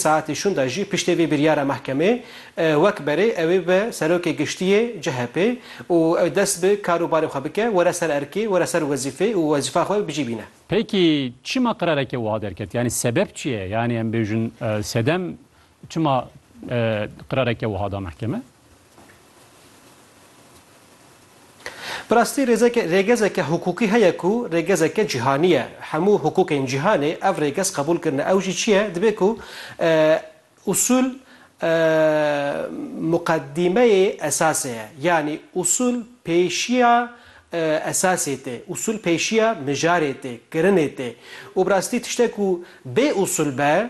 Saetê şûn de jî piştê vê biryara mehkemê wek berê ew ê bi Serokê Giştî yê CHP'ê û ew dest bi kar û barê xwe bike, were ser erkê, were ser wezîfê û wezîfa xwe bicî bîne. Peki çima qirareke wiha derket? Yanî sebeb çi ye? Yanî em bêjin sedem çima qirareke wiha da mehkeme? Bi rastî rêzeke rêgezeke hukûkî heye ku rêgezeke cîhanî ye. Hemû hukûkên cîhanê ev rêgez qebûl kirine. Ew jî çi ye? Dibe ku usûl muqedîmeyê esasê ye. Yanî usûl pêşiya esasê tê. Usûl pêşiya mijarê tê, kirinê tê. Û bi rastî tiştek ku bê usûl be,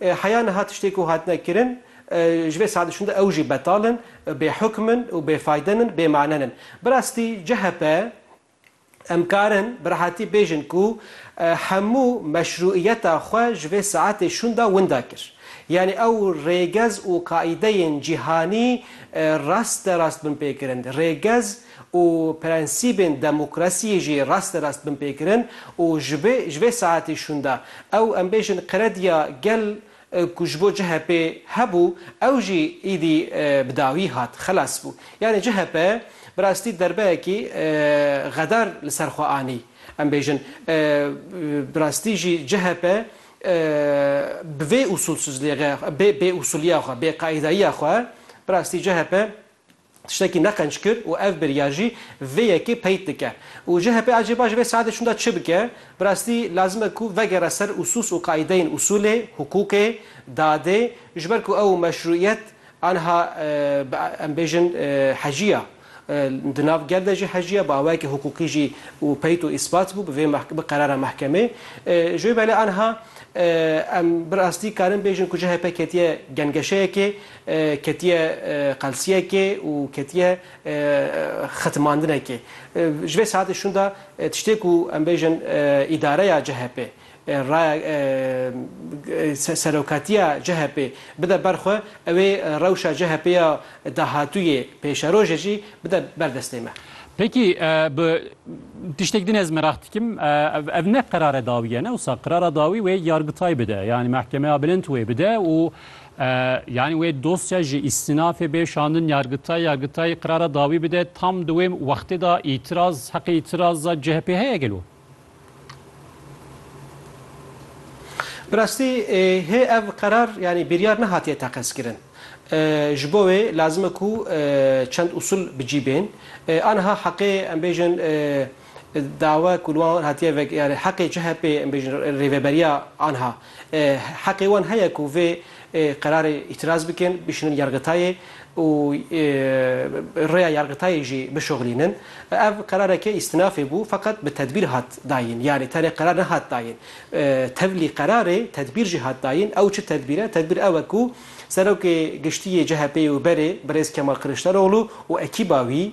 Heya niha tiştê ku hatine kirin ji vê saetê şûnde ew jî betal in, bêhukm in û bêfayde in, bêmane in. Bi rastî chp em karin bi rehatî bêjin ku hemû meşrûîyeta xwe ji vê saetê şûnde winda kir. Yanî ew rêgez û qaîdeyên cîhanî rast de rast binpêkirin. Rêgez û prensîbên demokrasiyê jî rasterast binpêkirin û ji vê ji vê saetê şûnde ew em bêjin qirediya gel ku ji bo CHP hebû ew jî îdî bi dawî hat, xelas bû. Yanî CHP bi rastî derbeyekî xedar li ser xwe anî. Em bêjin bi rastî jî CHP bi vê usulsizlêxe, bê bêusuliya xwe, bêqaîdayiya xwe bi rastî CHP, Tiştekî neqenc kir û ev biryar jî vê yekê peyt dike. Û chp ecêba ji vê saetê şûnda çi bike? Bi rastî lazim e ku vegere ser usûs û qaîdeyên usûlê, hukûkê, dadê ji ber ku ew meşrûîyet anha bi em bêjin hecî ya. Di nav gel de jî hecî ya bi awayekî hukûkî jî û peyt û îsbat bû bi vê bi qerara mehkemê. Ji wê belê anha em bi rastî karin bêjin ku chp ketiye gengeşeyekê. Ketiye qelsiyekê û ketiye xetimandinekê. Ji vê saetê şûnda tiştê ku em bêjin îdareya CHP'ê, raya serokatiya CHP'ê bide ber xwe, ew ê rewşa CHP'ê ya dahatûyê, pêşerojê jî bide ber destê me. Peki bi tiştek din ez meraq dikim, ev ne qerare dawî ye ne wisa qerara dawî wê yargitay bide, yanî mehkemeya bilind wê bide û Yanî wê dosya ji îstinafê bê şandin yargitay, yargitay qirara dawî bide tam di wê wextê de îtiraz heqê îtiraza CHP'ê heye gelo? Bi rastî hê ev qerar yanî biryar nehatiye teqezkirin. Ji bo wê lazim e ku çend usul bi cî bên. Aniha heqê em bêjin dawa ku li wan hatiye vegirin, heqê CHP'ê em bêjin rêveberiya aniha Heqê wan heye ku vê qerarê îtîraz bikin, bişînin yargitayê û rêya yargitayê jî bişoxilînin. Ev qerareke îstinafê bû, feqet bi tedbîr hat dayîn. Yanî tenê qerar nehat dayîn. Tevlî qerarê tedbîr jî hat dayîn. Ew çi tedbîr e? Tedbîr ew e ku Serokê Giştî yê CHP'ê û berê Birêz Kemal Kiliçdaroglu û ekîba wî,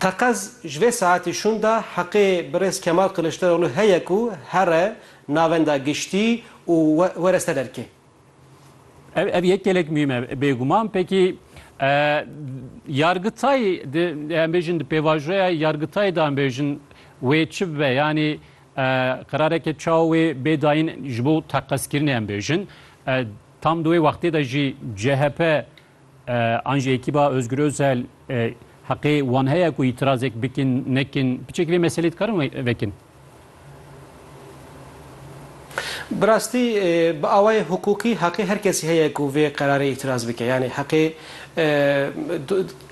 Teqez ji vê saetî şûn de heqê birêz Kemal Kiliçdaroglu heye ku here navenda giştî û were ser erkê. Ev ev yek gelek muhîm e bêguman. Pekî Yargitay di em bêjin di pêvajoya Yargitayê de em bêjin wê çi bibe yanî qerareke çawa wê bê dayîn ji bo teqezkirinê em bêjin. Tam di wê wextê de jî CHP an jî ekîba Ozgur Ozel heqê wan heye ku îtirazek bikin, nekin. Piçek vê meselê dikarin vekin? Bi rastî bi awayê hukûkî heqê her kesî heye ku vê qerarê îtiraz bike. Yanî heqê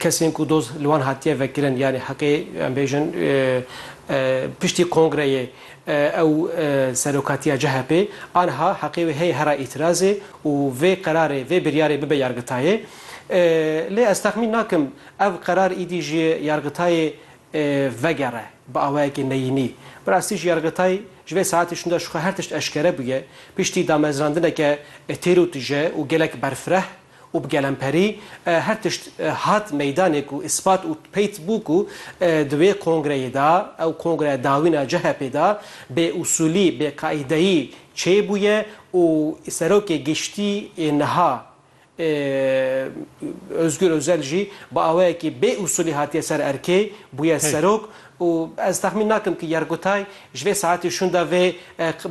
kesên ku doz li wan hatiye vekirin yanî heqê em bêjin piştî kongreyê Ew serokatiya CHP'ê anha heqê wê heye hera îtîrazê û vê qerarê, vê biryarê bibe yargitayê. Lê ez texmîn nakim ev qerar îdî ji yargitayê vegere bi awayekî neyînî. Bi rastî jî yargitay ji vê saetê şûnde ji xwe her tişt eşkere bûye. Piştî damezrandineke têr û tije û gelek berfireh, û bi gelemperî her tişt hat meydanê ku îspat û peyt bû ku di wê kongreyê de, ew kongre dawîna CHP'ê de bêûsûlî, bêqaîdeyî çêbûye û Serokê Giştî yê niha Ozgur Ozel jî bi awayekî bêûsûlî hatiye ser erkê, bûye serok. Û ez texmîn nakim ku Yergotay ji vê saetê şûnda vê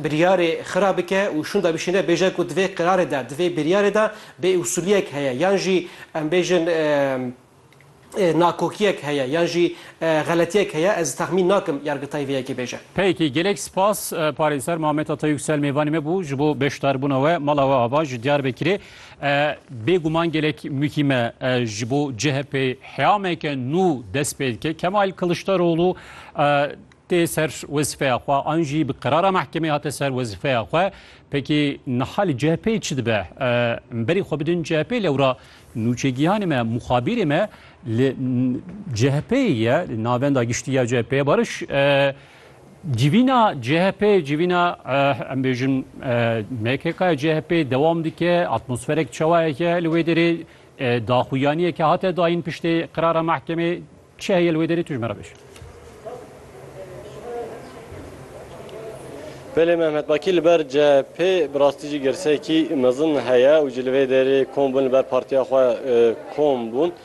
biryarê xira bike û şûnda bişîne bêje ku di vê qerarê de, di vê biryarê de bêûsûliyek heye yan jî em bêjin nakokiyek heye yan jî xeletiyek heye, ez texmîn nakim Yergotay vê yekê bêje. Peki gelek spas Parêzer Mamet Atayuksel mêvanê me bû ji bo beşdarbûna we mala we ava ji Diyarbekirê Bê guman gelek mûhîme ji bo CHP'ê heyameke nû dest pê dike. Kemal Kiliçdaroglu tê ser wezîfeya xwe an jî bi qerara mehkemê hate ser wezîfeya xwe. Pekî niha li CHP'ê çi dibe? Em berî xwe bidin CHP'ê lewra nûçegihanê me, muxabîrê me li CHP'ê ye, li navenda giştî ya CHP'ê Barış Civîna CHP, civîna em bêjin MKK'ya CHP dewam dike, atmosferek çawayeke li wê derê daxuyaniyeke hate dayîn piştê qirara mehkemê çi heye li wê derê tu ji me re bêj. Belê Mehmet Bakî li ber CHP bi rastî jî girsekî mezin heye û jî li vê derê kom bûn li ber partiya xwe kom bûn.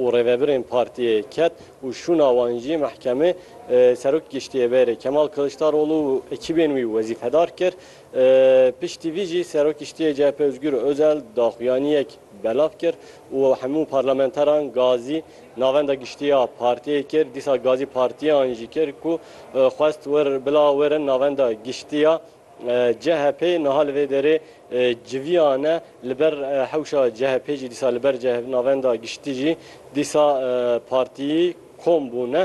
û rêvebirên partiyê ket û şûna wan jî mehkemê Serok giştî yê bêrê Kemal Kiliçdaroglu û ekîbên wî wezîfedar kir. Piştî vî jî Serok giştî yê chp Ozgur Ozel daxuyaniyek belav kir û hemû parlamenteran gazî navenda giştî ya partiyê kir. Dîsa gazî partiyan jî kir ku xwest wir bila werin navenda giştî ya CHP niha li vê derê civiyan e li ber hewşa CHP jî dîsa li ber Navenda Giştî jî dîsa partiyî kom bûne.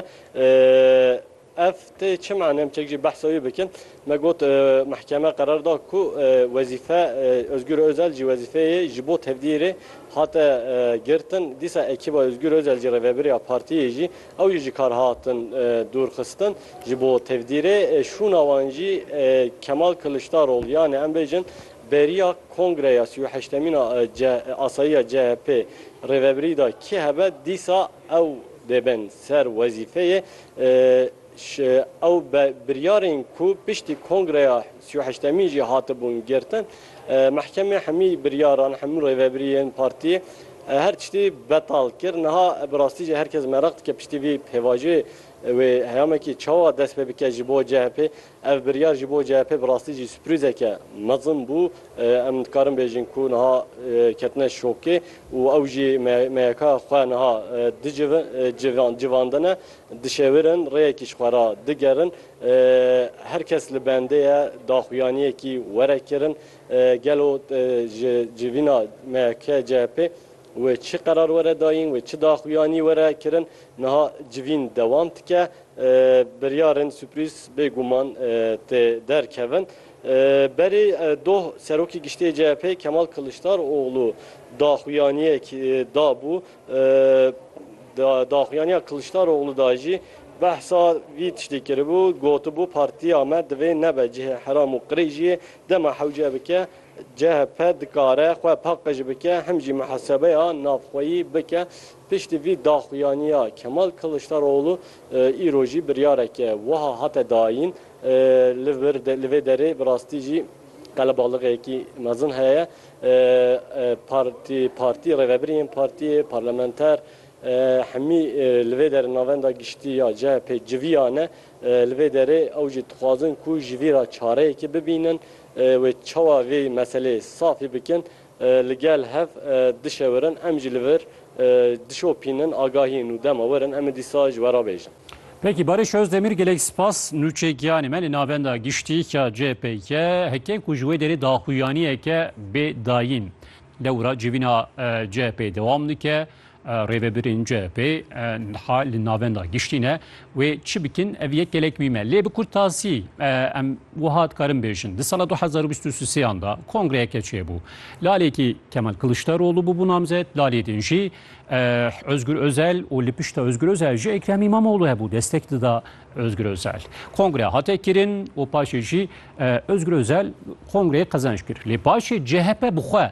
Ev tê çi mane em çek jî behsa wî bikin. Me got mehkeme qerar da ku wezîfe Ozgur Ozel jî wezîfeyê ji bo tevdîrê hate girtin. Dîsa ekîba Ozgur Ozel jî rêvebiriya partiyê jî Ew jî ji kar hatin dûrxistin. Ji bo tevdîrê şûna wan jî Kemal Kiliçdaroglu yanê em bêjin beriya kongreya sî û heştemîn a asayiya CHP'ê rêvebirî da kî hebe dîsa ew dê bên ser wezîfeyê. Ew biryarên ku piştî kongreya sî û heştemîn jî hatibûn girtin, Mehkemê hemî biryaran, hemû rêvebiriyên partiyê her tiştî betal kir. Niha bi rastî jî her kes meraq dike piştî vî pêvajiyê wê heyamekî çawa dest pê bike ji bo CHP'ê. Ev biryar ji bo CHP'ê bi rastî jî sürprîzeke mezin bû. Em dikarin bêjin ku niha ketine şokê û ew jî MYK'ya xwe niha civandine. Dişewirin, rêyekî ji xwe re digerin. Her kes li bendê ye daxuyaniyekî were kirin. Gelo ji civîna MHK, CHP wê çi qerar were dayîn, wê çi daxuyanî were kirin. Niha civîn dewam dike. Biryarên suprîz bê guman tê derkevin. Berî doh Serokê Giştî yê CHP'ê Kemal Kiliçdaroglu daxuyaniyek dabû Di daxuyaniya Kiliçdaroglu de jî behsa vî tiştê kiribû, gotibû partiya me divê nebe cihê heram û qirê jî yê, dema hewce bike chp dikare xwe paqij bike hem jî mihesebeya navxweyî bike. Piştî vî daxuyaniya Kemal Kiliçdaroglu îro jî biryareke wiha hate dayîn, Li vê derê bi rastî jî qelebalixekî mezin heye, Partî, Partî, Rêvebirî yên Partîyê, Parlamenter, hemî li vê derê Navenda Giştî ya CHP'ê civiyane. Li vê derê ew jî dixwazin ku ji vî re çareyekê bibînin wê çawa vê meseleyê safî bikin. Li gel hev dişewirin em jî li vir Dişopînin, agahîn û dema werin em ê dîsa ji we re bêjin. Peki Barış Özdemir gelek spas nûçe giyanê me li navenda giştî ya CHP'ye heke ku ji wê derê daxuyaniyeke bê dayîn dewra civîna CHP'ê dewam dike. Rêvebirên CHP'ê niha li navenda giştî ne Wê çi bikin ev yek gelek wî me. Lê bi kurtasî em wiha dikarin bêjin. Di sala 2023 da kongreyeke çêbû. Lalekî Kemal Kiliçdaroglu bûbû namzet, lalê din jî Özgür Özel û li pişta Özgür Özel jî Ekrem Îmamoğlu hebû destek dida Özgür Özel. Kongre hate kirin û paşê jî Özgür Özel kongreyê qezenç kir. Lê paşê CHP bi xwe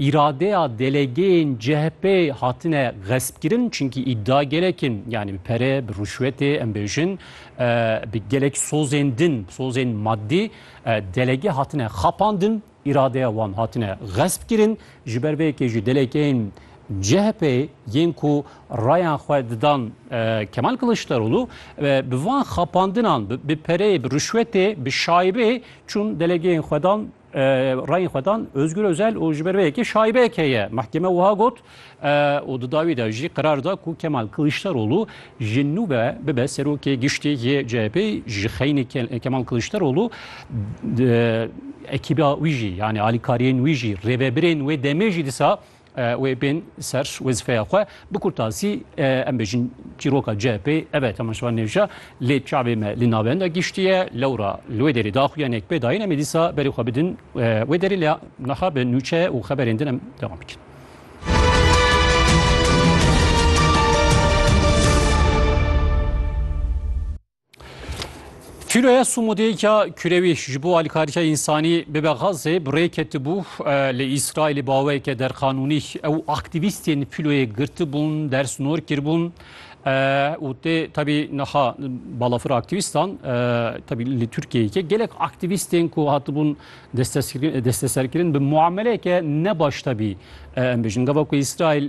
îradeya delegeyên CHP'ê hatine xespkirin çinkî îdia gelek in yanî bi pere, bi rûşwetê em bêjin bi gelek sozên din, sozên maddî delege hatine xapandin, îradeya wan hatine xespkirin. Ji ber vê yekê jî delegeyên CHP'ê yên ku rayan xwe didan Kemal Kiliçdaroglu bi van xapandinan bi pereyê, bi rûşwetê, bi şaibê çûn delegeyên xwe dan Rayên xwe dan Ozgur Ozel û ji ber vê yekê şaibeyek heye. Mehkeme wiha got û di dawî de jî qerar da ku Kemal Kiliçdaroglu ji nû ve bibe serokê giştî yê CHP'ê ji xeynî Kemal Kiliçdaroglu ekîba wî jî yanî alîkariyên wî jî rêvebirên wê demê jî disa Wê bên ser wezîfeya xwe. Bi kurtasî em bêjin çîroka CHP'ê ev e Temaşevan Nêvşa lê çavê me li navenda gihiştiye. Lewra li wê derê daxuyanek pê dayîn em ê dîsa berê xwe bidin wê derê lê niha bi nûçe û xeberên din em dewam bikin. Filoya Sumudêya Kürewî ji bo alîkariya însanî bibe Xazê bi rê ketibû li Îsraîlê baweyeke derqanûnî ew aktîvîstên filoyê girtibûn, dersnor kiribûn û tê tabî niha balafir aktîvîstan tabî li Tirkiyeyê gelek aktîvîstên ku hatibûn desteserkirin bi muameleyeke nebaş tabî em bijin gava ku Îsraîl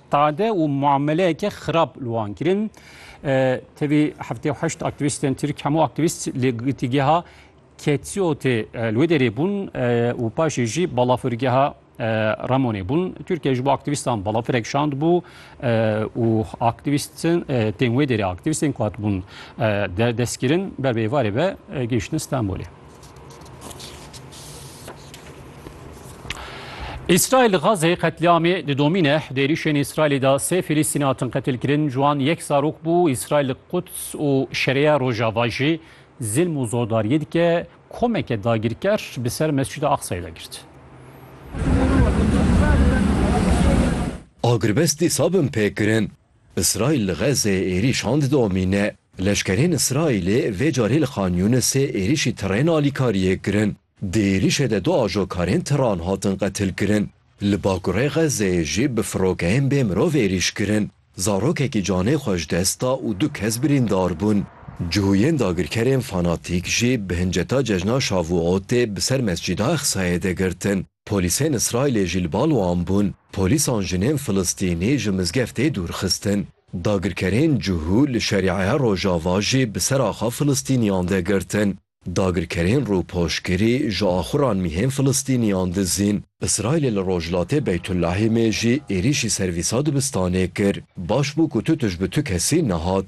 Qade û muameleyeke xirab li wan kirin. Tevî heftê heşt aktivîstên Tirk hemû aktivîst li girtîgeha Ketsiyotê li wê derê bûn û paşê jî balafirgeha Ramonê bûn. Tirkiye ji bo aktivîstan balafirek şand bû û aktivîstin tên wê derê aktivîstên ku hatibûn destkirin ber bi êvarê ve gihiştin Stenbolê. Îsraîl li Xazê qetlîamê didomîne. Di êrîşên Îsraîlê de sê Filîstînî hatin qetilkirin, ji wan yek zarok bû. Îsraîl li Quds û Şereya Rojava jî zilm û zordariyê dike. Komeke dagirker bi ser Mescîda Aqsayê de girt. Agirvest dîsa bin pêkirin. Îsraîl li Xezzê êrîşan didomîne. Leşkerên Îsraîlê vê carî li Xan Yûnisê êrîşî tirên alîkariyê kirin. Di êrîşê de du ajokarên tiran hatin qetilkirin. Li bakurê Xezzeyê jî bi firokeyên bê mirov êrîş kirin. Zarokekî canê xwe ji dest da û du kes birîndar bûn. Cihûyên dagirkerên fanatîk jî bi hinceta cejna Şavuotê bi ser Mescîda Exsayê de girtin. Polîsên Îsraîlê jî li bal wan bûn. Polîsan jinên Filistînî ji mizgeftê dûr xistin. Dagirkerên cihû li Şerîeya Rojava jî bi ser axa Filistîniyan de girtin. Dagirkerên rûpoşgirî ji axuran mîhên Filistîniyan dizîn. Îsraîlê li rojhilatê Beytulahîmê jî êrîşî servîsa dibistanê kir. Baş bû ku tu tij bi tu kesî nehat.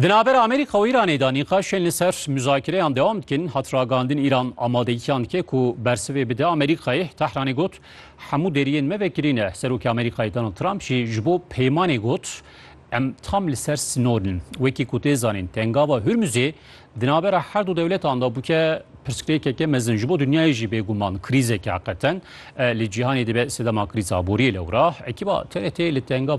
Di navber Amerîka û Îranê de nîqaşên li ser muzakireyan dewam dikin. Hat ragandin Îran amadegiyan dike ku bersivê bide Amerîkayê. Tehranê got hemû deriyên me vekirî ne. Serokê Amerîkayê Donald Trump jî ji bo peymanê got em tam li ser sinor in. Wekî ku tê zanîn tengava Hurmuzê di navbera her du dewletan de bûke pirsgirêkeke mezin ji bo dinyayê jî bêguman krîzeke qeten li cîhanê dibe sedema krîza boriyê lewra. Ekîba TRT li tengava